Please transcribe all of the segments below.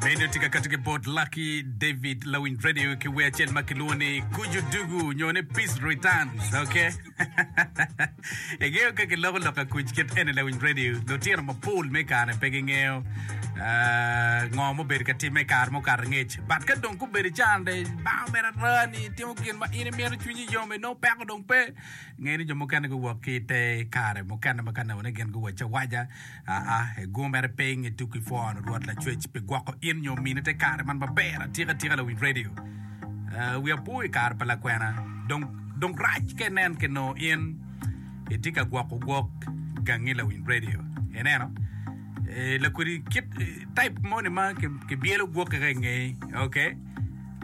Meno tye ka kati ki bot Lucky David lawiny radio ki wer acel ma kilwongo ni Kuju Dugu nyo ni Peace Returns, okay? Ingeyo ka kiloko loka kuc kit eni lawiny radio, lutino mapol me kare pe gingeyo ah, ngo mubedo ka timme i kare mukato ngec. But ka dong gubedo i can de bao mere arani, itimo gin ma in imito cwinyi yom, inongo peko dong pe. Ngeni jo mukene guwok ki i te kare mukene ma ka newone gin guwacawaca Aa, igurmere piny i tuku ipworo Rwot Lacwec pi gwoko in nyo mini te kare man maber atika atika lawiny radio. Aa, wi apo i kare pa lakwena, dong, dong rac ka inen ki noo in itye ka gwoko gwok gangi lawiny radio. Ineno? Ee, lakodi kit, type moni ma ki, kibyelo gwoki ka ingei, okay?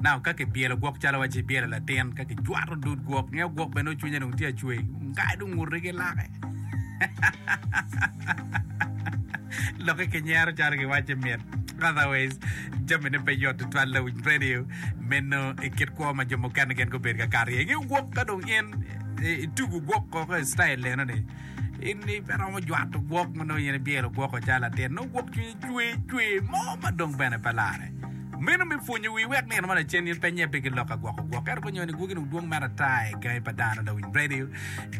Naka ka kibyelo gwok calo wa ci ibyelo latin ka kijwato dud gwok nge gwok bene dong cwinye dong tye acwee ngai dong ngute ki lake lokke ki nyero calo giwace mit otherwise jami ne pe yot tutwal lawiny radio meno i kit kwo ma jo mukene gin gubedo ka kato iye nge gwok ka dong in itugo gwok koko i style eno ni in ni pe romo jwato gwok ma nongo in ibyelo gwoko calo latin nongo gwok cwinyi cwe cwe mo ma dong bene pe lare meno me pwonyo wi wek nino ma lacen in pe nyebbi ki lok ka gwoko gwok ento pe nyoni gwoki dong dwong mere ata i gangi pa dano dong in ready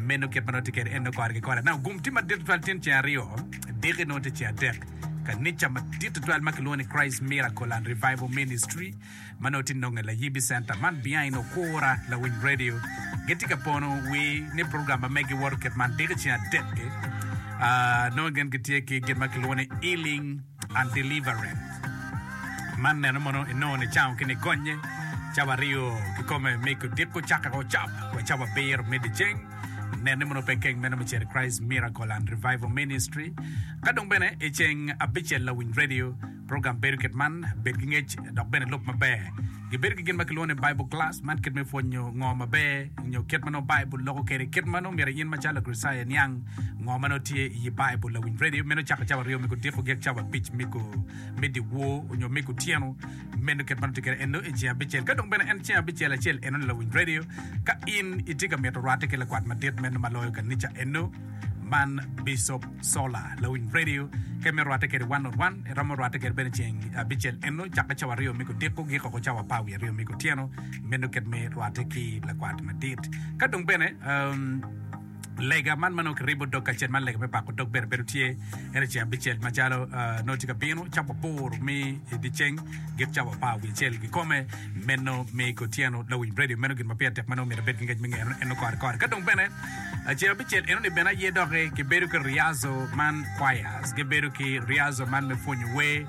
meno kit ma nongo tye kede en nongo kore ki kore now gum tye madit tutwal tyen ceng aryo diki nongo tye ceng adek kanica madit tutwal ma kilwongo ni Christ Miracle and Revival Ministry ma nongo tye nonge layib i centa man behind okura lawiny radio gitye ka pono wi ni program ma megi woto kit man diki ceng adek ki uh, nongo gin gitye ki gin ma kilwongo ni healing and deliverance man neno mono inongo ni cango ki ni gonye cawa aryo kikome mi kudiko cake o cap wa cawa abiro me diceng nene mono pe keng meno me ceri Christ Miracle and Revival Ministry ka dong bene i ceng abicel lawiny radio Program bedo kit man, Bed ki ngec dok bene lub maber. Gibedo ki gin ma kilwongo ni Bible Class, man kit me pwonyo ngo maber nyo kit ma nongo Baibul loko kwede. Kit ma nongo myero in macalo Lakricitayo iniang ngo ma nongo tye i Baibul, lawiny redio meno cako cawa aryo me odiko gek cawa abic me dyewor onyo me gutyeno. Meno kit ma nongo tye kwede eno i ceng abicel. Ka dong bene en ceng abicel acel enoni lawiny redio, ka in itye ka mito rwatte ki lakwat madit meno ma loyo kanica eno, Man Bicop Solar, lawiny radio, ke me rwatte kede one on one. Eromo rwatte kede bene ceng abicel eno, cakke cawa aryo me kudiko, giko ko cawa apar wiye aryo me kutyeno. Meno kit me rwatte ki lakwat madit. Ka dong bene, um, lega man ma nongo kiribo dog kacel man lega me pako dog bene bedo tye ene ceng abicel macalo uh, nongo tye ka bino cawa aboro me dyeceng git cawa apar wiye acel gikome meno me kutyeno lawiny radio meno gin ma pire tek ma nongo myero abed ki ngec me ngeyone eno kore kore ka dong bene Acel abicel enoni bene aye doki kibedo ki Riazo man choirs gibedo ki Riazo man me pwonyo wer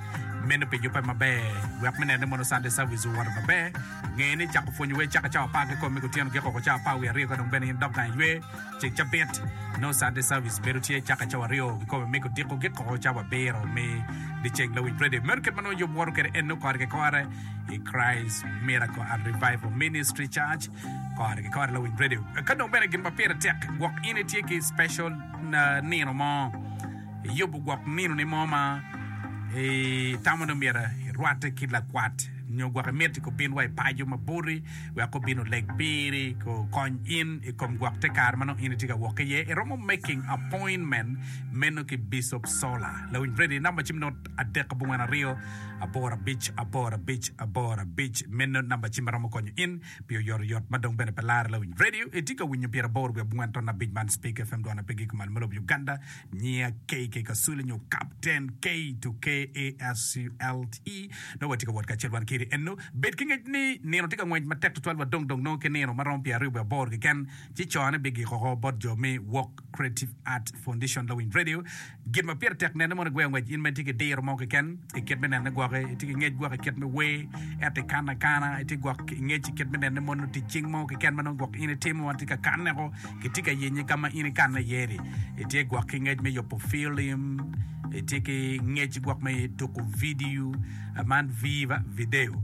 meno pi jubbe maber wek me neno ni mono Sunday service owoto maber nge ni cako pwonyo wer cako cawa apar ki kom me kutyeno giko ko cawa apar wiye aryo ka dong bene in idok gang i wer ceng cabit nongo Sunday service bedo tye cako cawa aryo ki kome me kudiko giko ko cawa abiro me dyeceng lawic radio meno kit ma nongo yub woto kwede en nongo kore ki kore i Christ Miracle and Revival Ministry Church Kore ki kore lawiny radio ka dong bene gin ma pire tek gwok in itye ki special nino mo iyubo gwok nino ni mo ma itamo ni myero irwate ki lakwat nyo gwok imiti ko bin wa ipajo ma boti wek ko bin oleg piri ko kony in ikom gwok te kare manong in itye ka wok iye iromo making appointment meno ki bishop sola lawiny radio number ci adek abongwen aryo aboro abic aboro abic aboro abic meno namba cim ma romo konyo in pi oyotoyot ma dong bene pe lare lawiny radio itye ka winyo pyera aboro wiye abongwen ton abic man speak fm dwan ape giko malo ma lobo Uganda nyiya KK Kasule nyo Captain K to KASULTE nongo watye ka wot kacel wan kiri enno bed ki ngec ni nino tye ka ngwec matek tutwal wa dong dong nongo ki nino ma romo pyera aryo wiye aboro keken ci cone bigiko oko bot jo me Walk Creative Art Foundition lawiny radio Gin ma pire tek nene mono i gweyo ngwec. In ma itye ki diro mo keken i kit me nene gwok, itye ki ngec gwok i kit me wer, ento ikano akana, itye gwok i ngec i kit me nene mono tic cing mo keken ma nongo gwok in itimo ma watye ka kanne-ku, kitye ka yenye ka ma in ikanne iye-ni. Itye gwok ki ngec me yubo filim, itye ki ngec gwok me tuko vidio, man viva, video.